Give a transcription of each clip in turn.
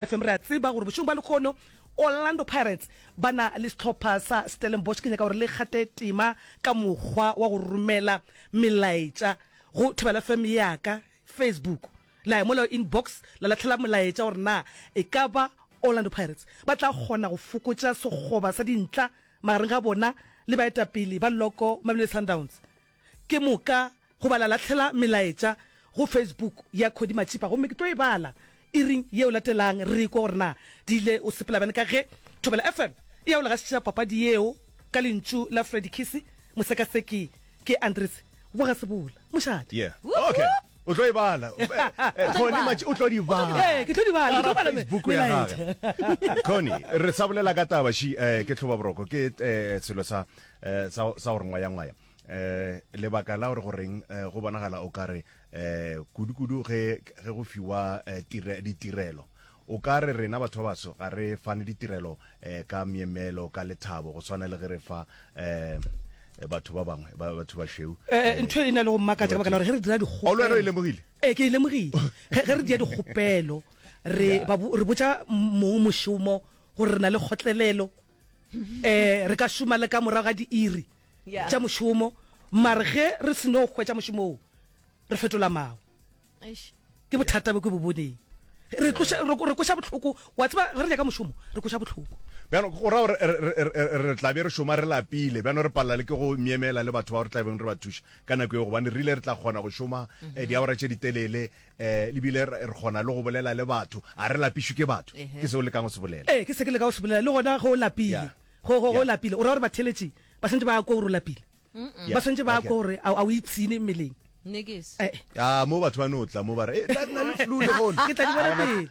FM re a tseba gore bošego bja lekgono Orlando Pirates ba na le sehlopha sa Stellenbosch. Ke nyaka gore le kgate tema ka mokgwa wa go romela melaetša go Thobela FM ya ka Facebook. La ya mola inbox la lahlela molaetša gore na e ka ba Orlando Pirates ba tla kgona go fokotša sekgoba sa dintla magareng ga bona le baetapele ba Loko Mamelodi Sundowns. Ke moka go bala latlhela melaetša go Facebook ya Khodi Matšhipa gomme ke tlo e bala iring yeo latelang re ikwa gore na di ile o sepela bjang ka ge Thobela FM e ya o legašetša papadi yeo ka lentšu la Freddy Kisi Mosekaseki ke Andries Bogasebola Mošate. Yeah. Okay. O tlo e bala. Khoni Matši o tlo di bala. Ee, ke tlo di bala. Ke tlo bala Facebook ya gage. Khoni, re sa bolela ka taba shi, eh, ke tlhoba boroko, ke eh, selo sa eh sa sa gore ngwaya ngwaya eh lebaka la gore goreng eh, go bonagala o kare eh kudu kudu ge ge go fiwa eh, tire ditirelo o ka re rena batho ba baso ga re fane ditirelo eh ka miemelo ka lethabo go swana le ge re fa eh batho ba bangwe ba batho ba sheu Eh, eh, ntho e na le go mmakatsa ka baka la gore ge re dira dikgopelo- Ao le wena o e lemogile? ee ke e lemogile ge ge re dia dikgopelo re ba bo- re botsa mong mošomo gore re na le kgotlelelo um re ka šoma le ka morago ga diiri tša mošomo mare ge re seno hwetša mošomo o re fetola mao ke bothata bo ke bo boneng re koša botlhoko wa tseba ge re nyaka mošomo re koša botlhoko bjano go ra gore re tlabe re šoma re lapile bjano re palela le ke go myemela le batho ba gore tlabeng re ba thuša ka nako e gobane re ile re tla kgona go šoma eh, diawara tše ditelele eh le bile re kgona le go bolela le batho a re lapišwe ke batho ke se o lekang go se bolela ee ke se ke leka go se bolela le gona go o lapile go go go lapile o ra gore batheletši ba swantse ba kwa gore o lapile ba swantse ba kwa gore a o ipshine mmeleng a mo batho ba no tla mo ba re eh, ke tla di bona pele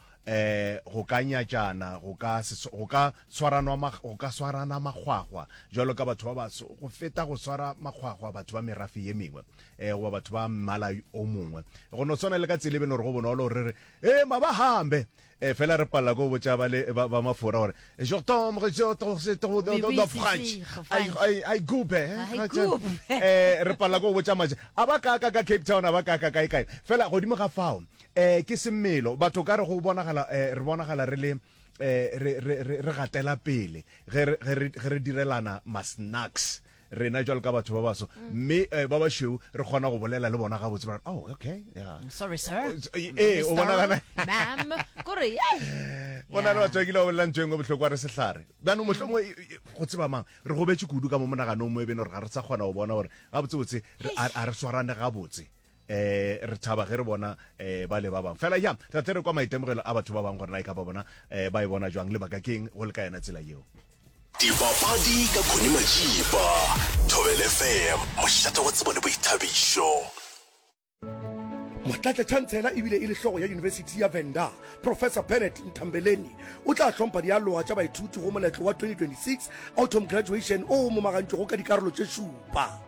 go ka nyatšana, go ka, go ka tshwaranwa, go ka swarana makgwakgwa jwalo ka batho ba baso, go feta go swara makgwakgwa batho ba merafe ye mengwe goba batho ba mmala o mongwe. Go no swana le ka tsela e beno re go bonolo gore re re, ee, mabahambe, fela re palela ko botša ba le ba, ba mafora gore, je tombe, je tombe, French, I gube, re palela ko botša maje, a ba kaaka ka Cape Town, a ba kaaka kae kae. Fela godimo ga fao, Eh, ke semelo batho ka re go bonagala eh, re bonagala re le eh, re, re, re, re gatela pele ge re- ge re ge re direlana masnacks rena jalo ka batho ba baso mme eh, ba bašweu re kgona go bolela le bona gabotse ba re, oh okay yeah. sorry sir Eh, eh, o bona gana- mam kore go na le batho ba kile ba bolelang tso engwe bohloko a re sehlare bjano motlho mongwe e- e- go tseba mang re gobetse kudu ka mo monaganong mo e beno re ga re sa kgona go bona gore gabotsebotse re- a a re swarane gabotse eh re thaba ge re bona eh ba le ba bang fela ya ra tle re kwa maitemogelo a batho ba bang gore na e ka ba bona eh ba e bona jwang le baka keng go le ka yena tsela yeo dipapadi ka khone majiba thobel fm mošate wa tsebo le boithabišo motlatša chancela ebile e le hlogo ya yunibesithi ya venda professor bennet ntambeleni o tla hlompha dialoga tša baithuti go moletlo wa 2026 autumn graduation o momagantšwego ka dikarolo tše šupa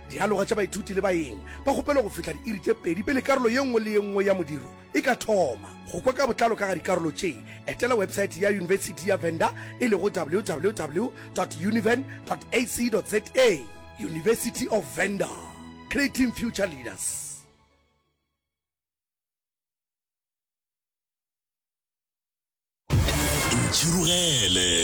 Dialoga tša baithuti le baeng ba kgopelo go fihla diiri tše pedi pele karolo ye nngwe le ye nngwe ya modiro e ka thoma. Go kwa ka botlalo ka ga dikarolo tše, etela webesaete ya Yunibesithi ya Venda e lego www.univen.ac.za. University of Venda, Creating Future Leaders. Ntšhirogele!